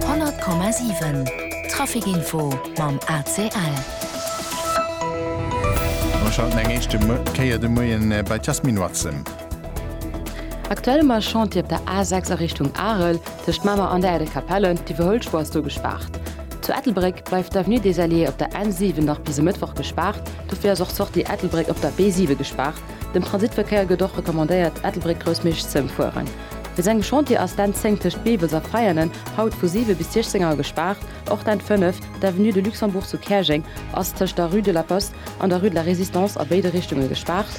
100,7 Trafic info mam ACL. Mer schalten eng éischte Kéier de Moien bei d'Jasmine Watson. Aktuell um Chantier op der A6 a Richtung Arel, tëscht Mamer an der Äädel Kapelle. D'Iwwerhuelspur ass do gespaart. Zu Ettelbréck bleift d'Avenue des Alliés op der N7 nach bis e Mëttwoch gespaart. Dofir ass och d'Sortie Ettelbréck op der B7 gespaart. Dem Transitverkéier gëtt och recommandéiert, Ettelbréck-Groussmiersch z'ëmfueren. Fir seng Chantiere ass d'Enn 10 tëscht Beebels a Veianen haut vu 7 bis 16 Auer gespaart. Och d'Enn 5, d'Avenue de Luxembourg zu Käerjeng, ass tëscht der Rue de la Poste an der Rue de la Résistance a béide Richtunge gespaart.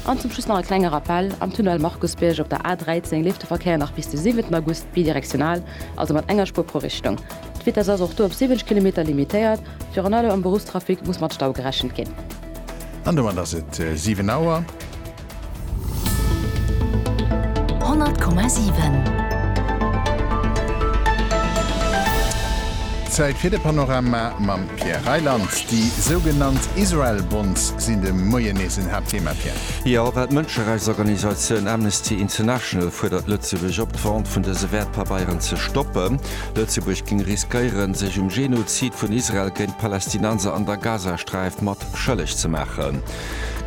An zum Schluss nach e klenge Rappell, Am Tunnel Markusbierg op der A 13 leeft de Verkéier nach bis de 7 August bidirektional, also mat enger Spuer pro Richtung. D'Vitess ass och do op 70 Kilometer limitéiert. Virun allem am Beruffstrafic muss mat Stau gerechent ginn. An domat ass et 7 Auer. Zäit fir de Panorama mam Pierre Reyland. Déi sougenannt Israel Bonds sinn de Moien nees en Haaptthema, Pierre. Jo, well d'Mënscherechtsorganisatioun Amnesty International fuerdert Lëtzebuerg op, d'Vente vun dëse Wäertpabeieren ze stoppen. Lëtzebuerg géing riskéieren, sech um Genozid vun Israel géint d'Palästinenser an der Gazasträif mat schëlleg ze maachen.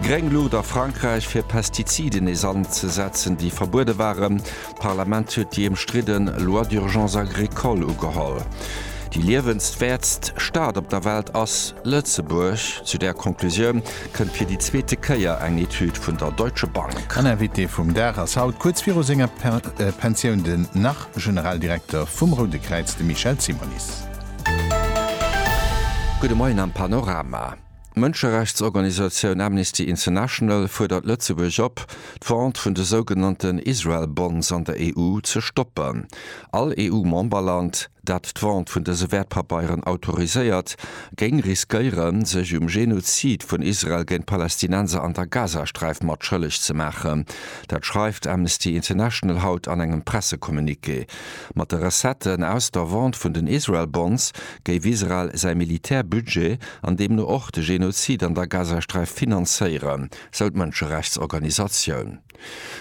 Gréng Luucht a Frankräich fir Pestiziden nees anzesetzen, déi verbuede waren. D'Parlament huet déi ëmstridden Loi d'urgence agricole ugeholl. Déi liewenswäertst Stad op der Welt ass Lëtzebuerg. Zu där Conclusioun kënnt fir déi zweete Kéier eng Etüd vun der Deutsche Bank. An Invité vum Dag ass haut, kuerz viru senger Pensioun, den nach Generaldirekter vum Roude Kräiz, de Michel Simonis. Gudde Moien am Panorama. D'Mënscherechtsorganisatioun Amnesty International fuerdert Lëtzebuerg op, d'Vente vun de sougenannten Israel Bonds an der EU ze stoppen. All EU-Memberland, dat d'Vente vun dëse Wäertpapeieren autoriséiert, géing riskéieren, sech um Genozid vun Israel géint d'Palästinenser an der Gazasträif mat schëlleg ze maachen. Dat schreift Amnesty International haut an engem Pressecommuniqué. Mat de Recetten aus der Vente vun den Israel Bonds géif Israel säi Militärbudget, an deemno och de Genozid an der Gazasträif finanzéieren, sou d'Mënscherechtsorganisatioun.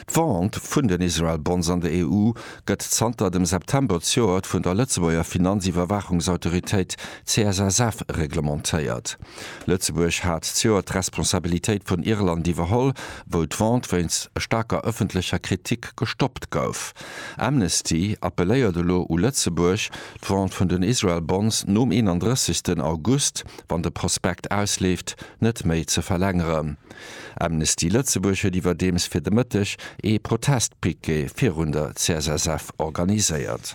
D'Vente vun den Israel Bonds an der EU gëtt zanter dem September zejoert vun der Lëtzebuerger Finanziwwerwaachungsautoritéit CSSF reglementéiert. Lëtzebuerg hat zejoert d'Responsabilitéit vun Irland iwwerholl, wou d'Vente wéinst staarker ëffentlecher Kritik gestoppt gouf. Amnesty appelléiert elo u Lëtzebuerg, d'Vente vun den Israel Bonds nom 31 August, wann de Prospekt ausleeft, net méi ze verlängeren. Amnesty Lëtzebuerg huet iwwerdeems fir de Mëtteg ee Protestpiquet virun der CSSF organiséiert.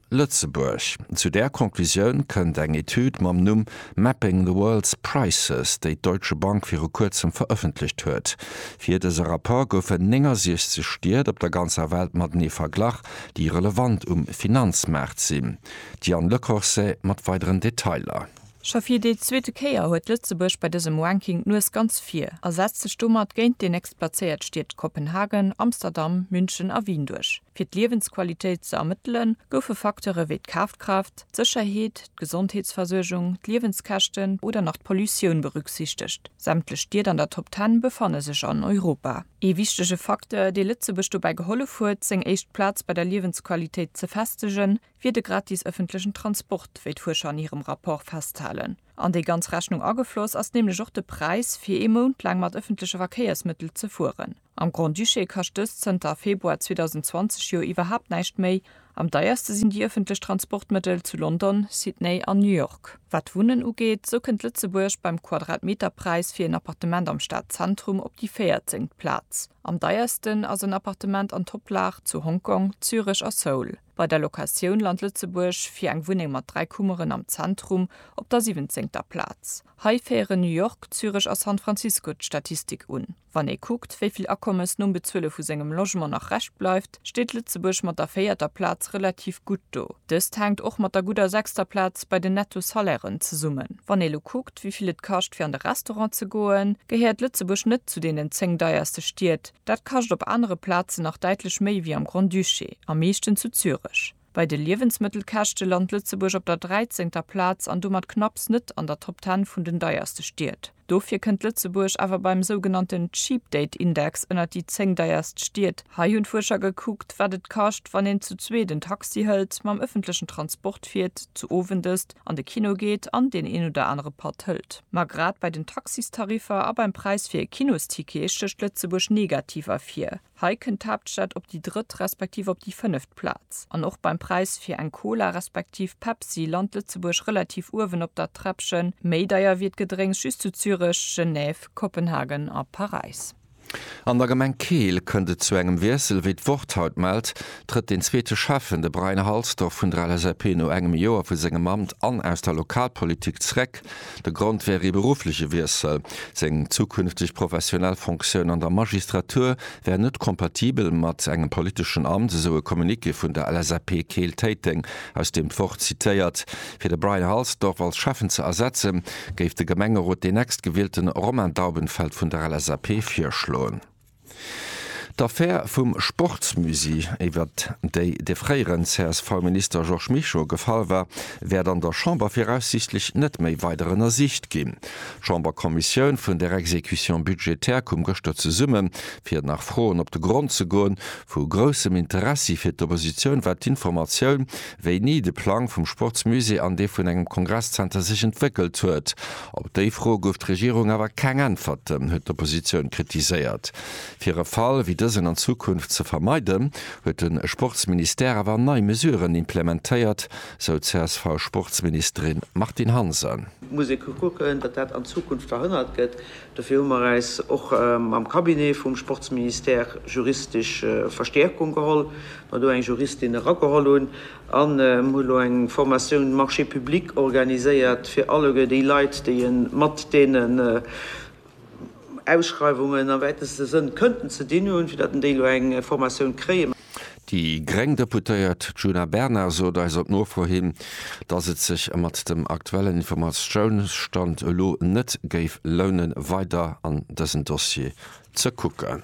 Lëtzebuerg. Zu där Conclusioun kënnt eng Etüd mam Numm Mapping the world's prices, déi d'Deutsche Bank viru kuerzem verëffentlecht huet. Fir dëse Rapport goufen 69 Stied op der ganzer Welt matenee verglach, déi relevant um Finanzmaart sinn. D'Diane Lecorset mat weideren Detailer. Scho fir déi zweete Kéier huet Lëtzebuerg bei dësem Ranking d'Nues ganz vir a setzt sech domat géint déi nächstplazéiert Stied Kopenhagen, Amsterdam, München a Wien duerch. Fir d'Liewensqualitéit ze ermëttelen, goufe Facteure wéi d'Kafkraaft, d'Sécherheet, d'Gesondheetsversuergung, d'Liewenskäschten oder nach d'Pollutioun berücksichtegt. Sämtlech Stied an der Top Ten befanne sech an Europa. Ee wichtege Facteur, dee Lëtzebuerg dobäi gehollef huet, seng éischt Plaz bei der Liewensqualitéit ze festegen, wier de gratis ëffentlechen Transport, wéi d'Fuerscher an hirem Rapport festhalen. An déi ganz Rechnung agefloss ass nämlech och de Präis, fir ee Mount laang mat ëffentleche Verkéiersmëttel ze fueren. Am Grand-Duché kascht dëst zënter Februar 2020 jo iwwerhaapt näischt méi. Am deierste sinn déi ëffentlech Transportmëttel zu London, Sydney an New York. Wat d'Wunnen ugeet, sou kënnt Lëtzebuerg beim Quadratmeterpräis fir en Appartement am Stadzentrum op déi véierzengt Plaz. Am deiersten ass en Appartement an Toplag zu Hongkong, Zürech a Seoul. Bei der Locatioun lant Lëtzebuerg fir eng Wunneng mat dräi Kummeren am Zentrum op der siwwenzéngter Plaz. Hei féieren New York, Zürech a San Francisco d'Statistik un. Wann ee kuckt, wéi vill Akommes nom Bezuele vu sengem Logement nach Rescht bleift, steet Lëtzebuerg mat der véierter Plaz relativ gutt do. Dëst hänkt och mat der gudder sechster Plaz bei den Netto-Salairen zesummen. Wann ee lo kuckt, wéi vill et kascht fir an de Restaurant ze goen, gehéiert Lëtzebuerg net zu deenen zéng deierste Stied, Dat kascht op anere Plazen nach däitlech méi wéi am Grand-Duché, am meeschten zu Zürech. Bei de Liewensmëttelkäschte lant Lëtzebuerg op der dräizéngter Plaz an domat knapps net an der Top Ten vun den deierste Stied. Dofir kënnt Lëtzebuerg awer beim sougenannten Cheap Date Index ënnert déi zéng deierst Stied. Hei hunn d'Fuerscher gekuckt, wat et kascht, wann een zu zweet en Taxi hëlt, mam ëffentlechen Transport fiert, zu Owendësst, an de Kino geet an deen een oder anere Patt hëlt. Ma grad bei den Taxistariffer a beim Präis fir e Kinosticket stécht Lëtzebuerg negativ ervir. Hei kënnt d'Haaptstad op déi drëtt respektiv op déi fënneft Plaz. An och beim Präis fir eng Cola respektiv Pepsi lant Lëtzebuerg relativ uewen op der Träppchen. Méi deier wier d'Gedrénks just zu Zürech, Genève, Kopenhagen a Paräis. An der Gemeng Keel kënnt et zu engem Wiessel. Wéi d'Wort haut mellt, trëtt deen zweete Schäffen, de Brian Halsdorf vun der LSAP, no engem Joer vu sengem Amt an aus der Lokalpolitik zréck. De Grond wär ee beruffleche Wiessel. Seng zukünfteg professionell Fonctioun an der Magistratur wär net kompatibel mat engem politeschen Amt, esou e Communiqué vun der LSAP Keel-Téiteng, aus deem d'Wort zitéiert. Fir de Brian Halsdorf als Schäffen ze ersetzen, géif de Gemengerot deen Nächstgewielte Romain Daubenfeld vun der LSAP virschloen. D'Affär vum Sportsmusée, iwwer déi de fréieren CSV-Minister Georges Mischo gefall war, wäert an der Chamber viraussiichtlech net méi weider ënnersicht ginn. D'Chamberkommissioun vun der Exécution budgétaire koum gëschter zesumme fir nach Froen op de Grond ze goen. Vu groussem Interessi fir d'Oppositioun war d'Informatioun, wéini de Plang vum Sportsmusée an dee vun engem Kongresszenter sech entwéckelt huet. Op déi Fro gouf d'Regierung awer keng Äntwerten, huet d'Oppositioun kritiséiert. Fir e Fall wéi dësen an Zukunft ze vermeiden, huet de Sportsministère awer nei Mesuren implementéiert, sou d'CSV-Sportsministerin Martine Hansen. Et muss ee kucken, datt dat an Zukunft verhënnert gëtt. Dofir hu mer äis och mam Cabinet vum Sportsministère juristesch Verstäerkung geholl, mer do eng Juristin erageholl hunn an hu lo eng Formatioun Marchés publics organiséiert fir alleguer déi Leit, déi e mat deenen Ausschreiwungen am wäiteste Sënn kënnten ze dinn hunn, fir datt en déi lo eng Formatioun kréien. Déi gréng Deputéiert Djuna Bernard sot eis op Nofro hin, datt et sech mat dem aktuellen Informatiounsstand elo net géif lounen, weider an dësen Dossier ze kucken.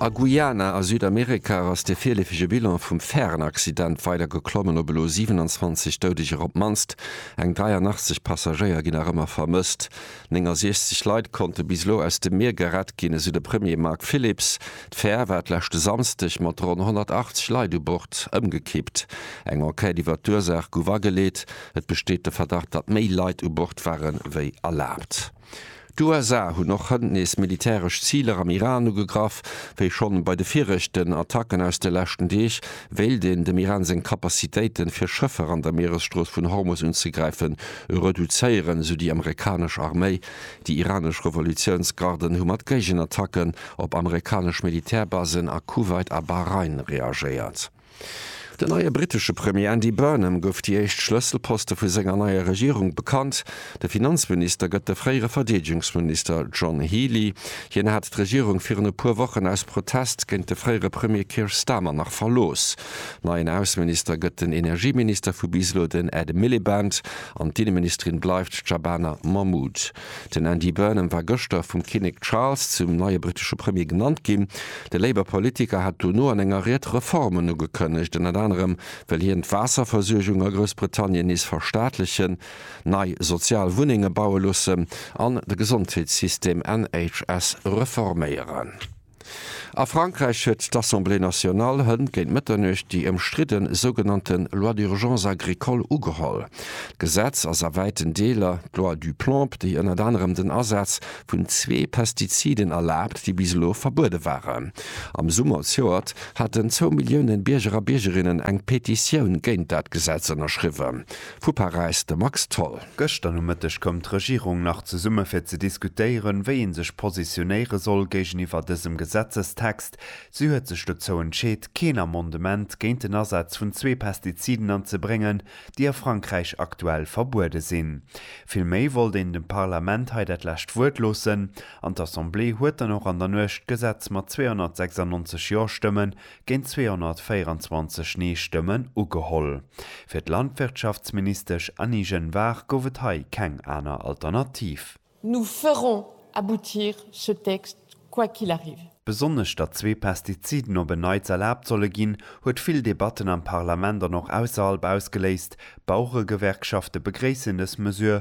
A Guyana a Südamerika ass de virleefege Bilan vum Färenaccident weider geklommen op elo 27 Doudeger. Op d'mannst eng 83 Passagéier ginn nach ëmmer vermësst. 69 Leit konnte bis elo aus dem Mier gerett ginn, esou de Premier Mark Phillips. D'Fär war d'leschte Samsdeg mat ronn 180 Leit u Bord ëmgekippt. Eng Enquête iwwer d'Ursaach gouf ageleet. Et besteet de Verdacht, datt méi Leit u Bord ware wéi erlaabt. D'USA hunn och hënt nees militäresch Ziler am Iran ugegraff. Wéi schonn bei de viregten Attacken aus de leschten Deeg, wéilt een dem Iran seng Capacitéiten, fir Schëffer an der Mieresstrooss vun Hormus unzegräifen, reduzéieren, esou déi amerikanesch Arméi. Déi iranesch Revolutiounsgarden hu mat Géigenattacken op amerikanesch Militärbasen a Kuwait a Bahrain reagéiert. Den neie brittesche Premier Andy Burnham gouf déi éischt Schlësselposte vu senger neier Regierung bekannt. De Finanzminister gëtt de fréiere Verdeedegungsminister John Healey. Hien hat d'Regierung virun e puer Wochen aus Protest géint de fréiere Premier Keir Starmer nach verlooss. Neien Ausseminister gëtt den Energieminister vu bis elo, den Ed Miliband, an d'Inneministerin bleift d'Shabana Mahmood. Den Andy Burnham war gëschter vum Kinnek Charles zum neie brittesche Premier genannt ginn. De Labour-Politiker hat dono an enger Ried Reformen ugekënnegt. Ënnert anerem wëll hien d'Waasserversuergung a Groussbritannien nees verstaatlechen, nei sozial Wunnenge baue loossen an de Gesondheetssystem, NHS, reforméieren. A Frankräich huet d'Assemblée nationale hënt géint Mëtternuecht déi ëmstridde sougenannte Loi d'urgence agricole ugeholl. D'Gesetz ass a wäiten Deeler d'Loi Duplamp, déi ënnert anerem den Asaz vun zwee Pestiziden erlaabt, déi bis elo verbuede waren. Am Summer zjoert haten zwou Millioune Bierger a Biergerinnen eng Petitioun géint dat Gesetz ënnerschriwwen. Vu Paräis de Max Tholl. Gëschter Nomëtteg koum d'Regierung nach zesumme fir ze diskutéieren, wéi ee sech positionéiere soll géigeniwwer dësem Gesetzestext. Si huet sech dozou entscheet, keen Amendement géint den Asaz vun zwee Pestiziden anzebréngen, déi a Frankräich aktuell verbuede sinn. Villméi wollt een dem Parlament hei dat lescht Wuert loossen an d'Assemblée huet dann och an der Nuecht d'Gesetz mat 296 Jo-Stëmme géint 224 Nee-Stëmmen ugeholl. Fir d'Landwirtschaftsministesch Annie Genevard gouf et hei keng aner Alternativ. Nous ferons aboutir ce texte quoi qu'il arrive. Besonnesch datt zwee Pestiziden op en Neits erlaabt solle ginn, huet vill Debatten am Parlament an och ausserhalb ausgeléist. D'Baueregewerkschafte begréissen dës Mesure,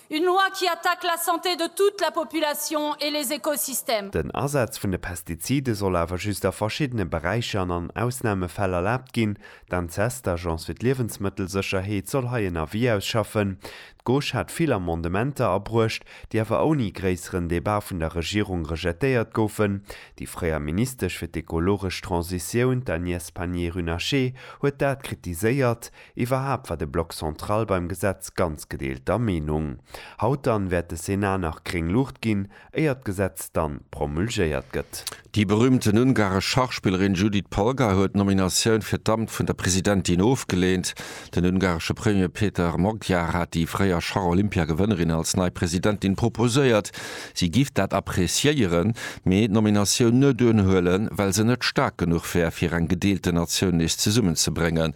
Une loi qui attaque la santé de toute la population et les écosystèmes. Den Asaz vun de Pestizide soll awer just a verschiddene Beräicher an an Ausnamefäll erlaabt ginn. D'ANSES, d'Agence fir d'Liewensmëttelsécherheet, soll hei en Avis ausschaffen. D'Gauche hat vill Amendementer abruecht, déi awer ouni gréisseren Debat vun der Regierung rejetéiert goufen. Déi fréier Ministesch fir d'ekologesch Transitioun, d'Agnès Pannier-Runacher, huet dat kritiséiert. Iwwerhaapt war de Bloc central beim Gesetz ganz gedeelter Meenung. Haut dann wäert de Senat nach gréng Luucht ginn, éier d'Gesetz dann promulgéiert gëtt. Déi berühmten ungaresch Schachspillerin Judit Polgar huet d'Nominatioun fir d'Amt vun der Presidentin ofgeleent. Den ungaresche Premier Peter Magyar hat déi fréier Schach-Olympiagewënnerin als nei Presidentin proposéiert. Si giff dat appreciéieren, mee d'Nominatioun net unhuelen, well se net staark genuch wär, fir eng gedeelte Natioun nees zesummenzebréngen.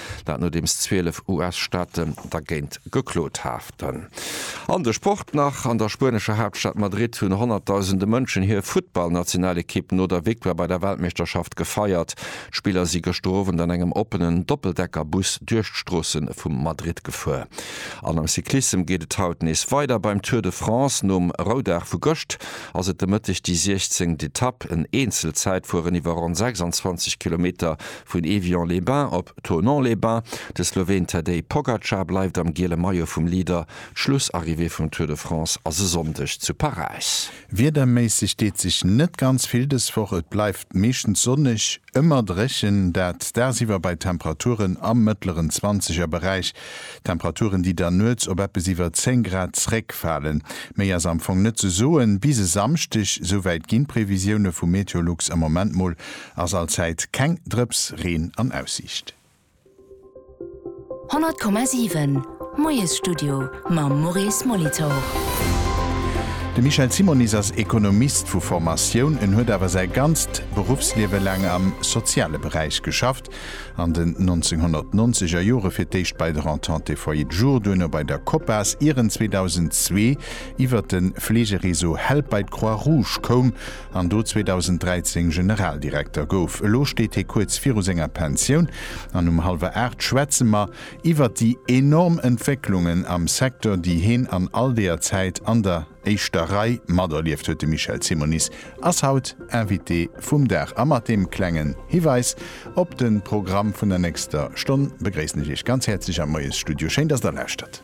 Dat nodeems 12 US-Staate dergéint geklot haten. An de Sport nach, An der spuenescher Haaptstad Madrid hunn honnertdausende Mënschen hir Futtballnationalekipp no der Victoire bei der Weltmeeschterschaft gefeiert. D'Spiller si gëschter Owend an engem oppenen Doppeldecker-Bus duerch d'Stroosse vu Madrid gefuer. An am Cyclissem geet et haut nees weider beim Tour de France. Nom Roudag vu gëscht ass et de Mëtteg déi 16. Etapp. En Eenzel-Zäitfueren iwwer ronn 26 Kilometer Vun Évian-les-Bains op Thonon-les-Bains, de Sloween Tadej Pogacar bleift am giele Maillot vum Leader, d'Schlussarrivée vum Tour de France ass e Sonndeg zu Paräis. Wiederméisseg deet sech net ganz vill dës Woch, et bleift meeschtens sonneg, ëmmer dréchen, dat dagsiwwer bei Temperaturen am mëttleren Zwanzegerberäich, Temperaturen déi dann nuets op eppes iwwer 10 Grad zréckfalen. Méi ass am Fong net ze soen bis e Samschdeg, souwäit ginn d'Previsioune vu Meteolux am Moment mol Ass allzäit keng Drëps Reen an Aussiicht. 100,7 Moiesstudio mam Maurice Molitor. De Michel Simonis ass Ekonomist vu Formatioun. En huet awer säi ganzt Beruffsliewe laang am soziale Beräich geschafft, an den 1990 er Jore fir d'éischt bei der Entente des Foyers de Jour, duerno bei der Copas, ier en 2002 iwwert de Fleegereseau Help bei d'Croix-Rouge koum. an do 2013 Generaldirekter gouf. Elo steet hie kuerz viru senger Pensioun an um hallwer Aacht schwätze mer iwwert déi enorm Entwécklungen am Secteur, déi heen an all deeër Zäit an der éischter Rei materlieft huet. De Michel Simonis ass haut Invité vum Dag a mat deem klengen Hiweis op de Programm vun der nächster Stonn begréissen ech Iech ganz häerzlech am Moiesstudio. Schéin, dass Der lauschtert.